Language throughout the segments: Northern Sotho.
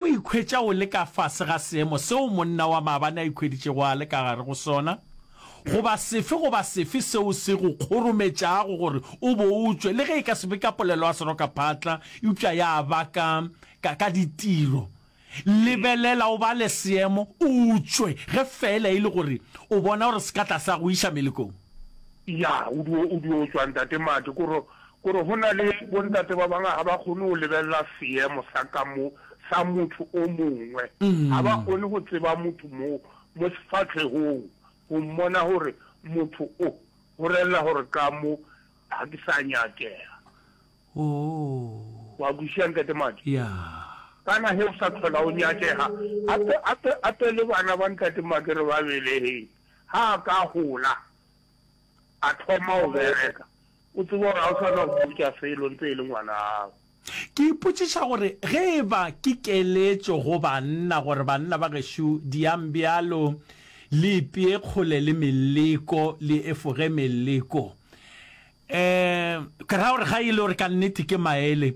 O ikhwetša o le ka fase ga seemo seo monna wa maabane a ikhweditšego a le ka gare go sona, goba sefe goba sefe seo se go kgorometšago gore o bo o tšwe, le ge e ka se be ka polelo ya serokaphatla eupša ya ba ka, ka, ka ditiro. Lebelela o bale seemo, o tšwe, ge feela e le gore o bona gore se ka tlase ga go iša melekong. Ya, o dio, o dio tšwa, Ntate Mart, ke go, Gore go na le bontate ba bangwe ga ba kgone go lebelela seemo sa ka mo sa motho o mongwe. Ga ba kgone go tseba motho mo mo sefahlehong go mmona gore motho o go relela gore ka mo ga ke sa nyakega. Wa kwešiša Ntate Majo? Kana ge o sa tlhola o nyakega gape gape gape le bana ba Ntate Make re ba belegile. Ga a ka gola a thoma go bereka O tseba gore ga o sa na go botša selo ntse e le ngwana'ago. Ke ipotšiša gore ge e ba ke keletšo go banna gore, Banna ba gešo, diang bjalo, le ipee kgole le meleko, le efoge meleko. Um, ke ra gore ga e le gore ka nnete ke maele,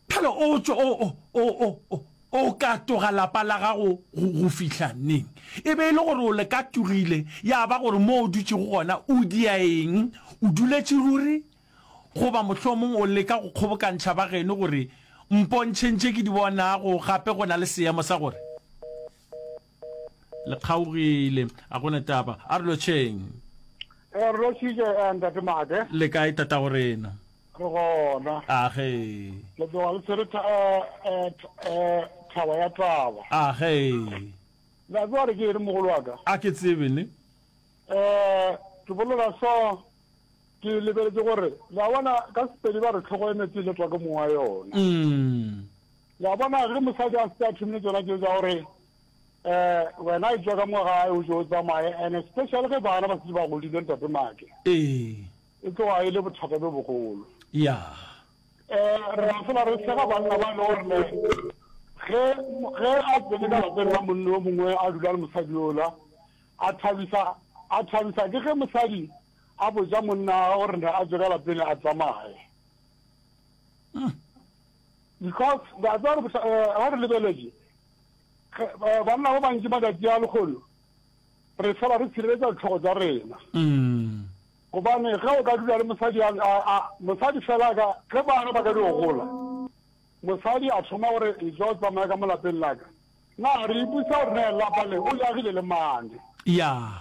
Phela o tšo o, o, o, o, o, o ka toga lapa la gago go, go fihla neng? E be e le gore o le ka togile, ya ba gore mo o dutšego gona o dia eng? O duletše ruri? Goba mohlomong o leka go kgobokantšha ba geno gore, Mpontšheng tše ke di bonago, gape go na le seemo sa gore. le kgaogile a gona taba a re lotšheng eh, re lotšhitše eh, ntate made le kae tata go rena re gona age le tloga le tshwere eh, thaba ya taba age la tloga re ke ere mogolo wa ka a ke tsebe ne um ke bolela so ke lebeletse gore la bona ka sepedi ba re tlhogo e metse le tswa ke mong wa yona mm. Wa bona, ge mosadi a se a thomile tsona tšeo tsa gore um wena e tšwa ka mo gae o jo o tsamaye, and especially ge bana ba setse ba godile, ntate Maake, ee, e tloga e le bothata bjo bogolo. ya Um re a fela re sega banna ba e le gore ne ge ge a tsene ka lapeng la monna yo mongwe a dula le mosadi yola a thabisa a thabisa ke ge mosadi a botša monna wa gagwe gore ne a tswe ka lapeng a tsamaye. Because ba tseba gore bohla, eh, ga re lebeletše, ge, eh, banna ba bantši matšatši a lekgolo, re fela re tshireletša ditlhogo tša rena. Mm. Gobane ge o ka dula le mosadi, a, a, a, mosadi fela ka, ge bana ba ka di gola, mosadi a thoma gore e tlo tsamaya ka mo lapeng la ka. Na re ipusa gore na lapa le o jagile le mane? Yeah.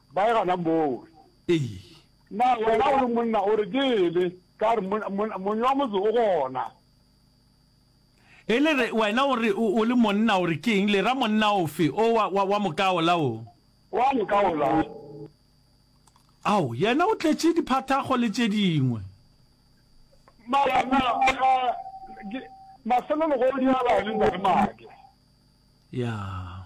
Ba e gana moo. Ee. Na wena o le monna o re ke ele? Ka re, Monna, monna, Monnyi wa motse o gona. E le re, wena o re o, o le monna o re ke eng? Le ra monna ofe? O wa, wa, wa moka ola o. Wa moka ola. Ao, yena o tletše diphathago le tše dingwe. Mara, na, ga, ke, mafelelogodi a ba le ntate Maake. Ya.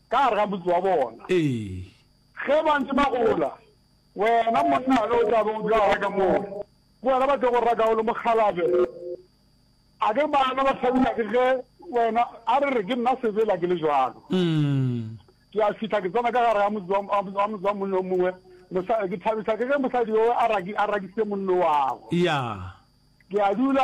ka gare ga motse wa bona. Ee. Ge ba ntše ba gola, wena monna yo o tla bego o dula gare ka moo, ke wena ba tlogo rata o le mokgalabje. A ke bana ba hlabja ke ge wena, a re re ke nna sebela ke le bjalo. Ke a fihla ke tsena ka gare ga motse wa, wa, wa motse wa monna yo mongwe, mosa, ke thabiswa ke ge mosadi yo a raki, a rakisitše monno wago. Ya. Ke a dula.